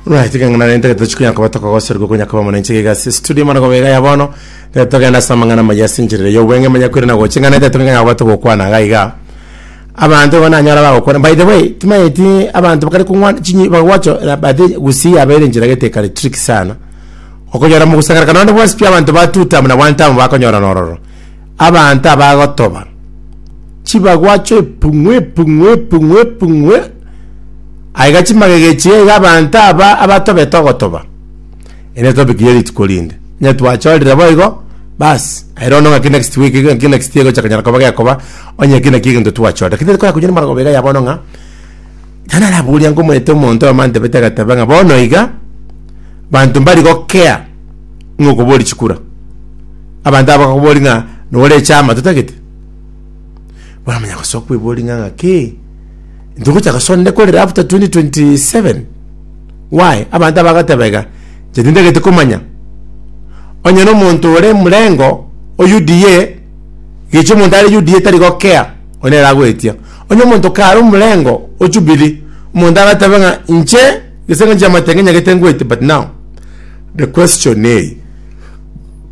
Right, kangana nente geto chikunya koba tokogoserwa gokonya koba monenche giga si studio mara gobega ya bono geto togenda asa amang'ana maya sinchirire yo bwenge manya kwire na gochi ng'ana ete tong'enya koba togokwana iga iga abanto igo nanyora bagokwana by the way timayeti abanto bakare kong'wana chinyi bagocho na bati gusii yabeire enchera gete kare trick sana okonyora mogusangera kana onde bwasipia abanto batuta muna one time bakonyorana ororo Abanto abagotoba chibagwa chepung'u epung'u epung'u epung'u e- aiga chimagega echi aiga abanto aba abatobete ogotoba ere topic ye rituko rinde onye twachorire boigo bas aye rono ng'aki next week iga ng'aki next year egocha konyara koba gekoba onye eki naki egento twachorire lakini tikonya koinyora amarogoba iga ya bono ng'a nani araboria ngomanyete omonto oyomo antebete agateba ng'a bono iga banto mbari gokea ng'okoboria chikura. Abanto aba bakakobori ng'a nore echama totagete, baramanya gosoa kwebori ng'a ng'aki ntogocha gosoa nde korera after 2027 why abanto aba bagateba iga inche tintagete komanya onye na omonto ore emurengo o UDA gechi omonto are UDA tari gokea oyo nere agoetia onye omonto kare omorengo o Jubilee omonto agatebe ng'a inche gese engaki y'amatenga nyagete ngoetia but now the question eye.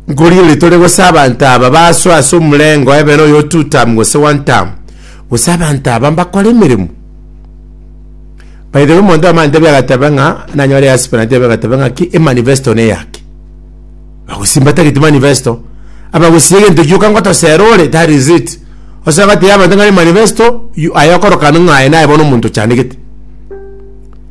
Nkorigereria tore gose abanto aba basoe ase omorengo ebere oyo o two term gose one term, gose abanto aba mbakore emeremo. By the way, omonto omanyete tebia agatebe ng'a nanyore easpen aye tebia agatebe ng'a ki emanifesto neyake. Bagosimba tagete manifesto, abagosie egento gioka ngotosera ore that is it. Osoe gotebia abanto ng'a emanifesto you aye okorokana ng'a aye naye bono omonto ochandegete.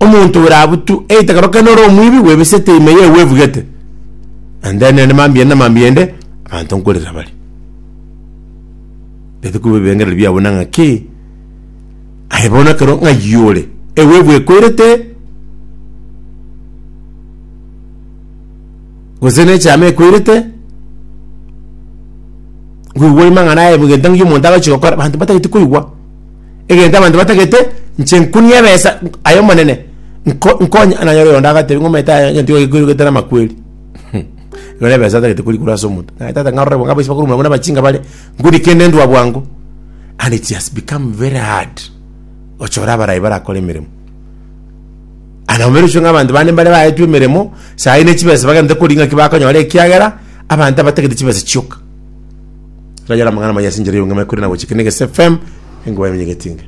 omonto ore abwo tu, either kero kende ore omwibi bwebisete ime yaye bwebugete, and then ende mambia ende mambia ende, abanto nkorera bare. Gete koba ebirengereri biabo na ng'aki, aye bono ekero ng'ai ore, ewe ebwekoirete, gose ne echaama ekoirete, bwigwa amang'ana aye bwegento ng'ai omonto agochi gokora, abanto batageti koigwa. egento abanto batagete inche nkunie ebesa aye omonene nko nkonye nanyore oyonde agatebia ng'a omanyete aye egento gikogikwa gete namakweri hum nere ebesa atagete korikwa ase omonto naye tata ng'a ororebo ng'a abaise bakorwa muna abachinga bare ngudi kende ndwa bwango and it has become very hard ochore abarai barakore emeremo aye nabo mbairosia ng'a abanto bande mbare baetwe emeremo saii ne chibesa bagende kori ng'aki bakonyora ekiagera abanto abatagete chibesa chioka. Rayera amang'ana amaya ase enchera y'obong'aini korende nagochike na egese FM, enkuba yamenyeke etinge.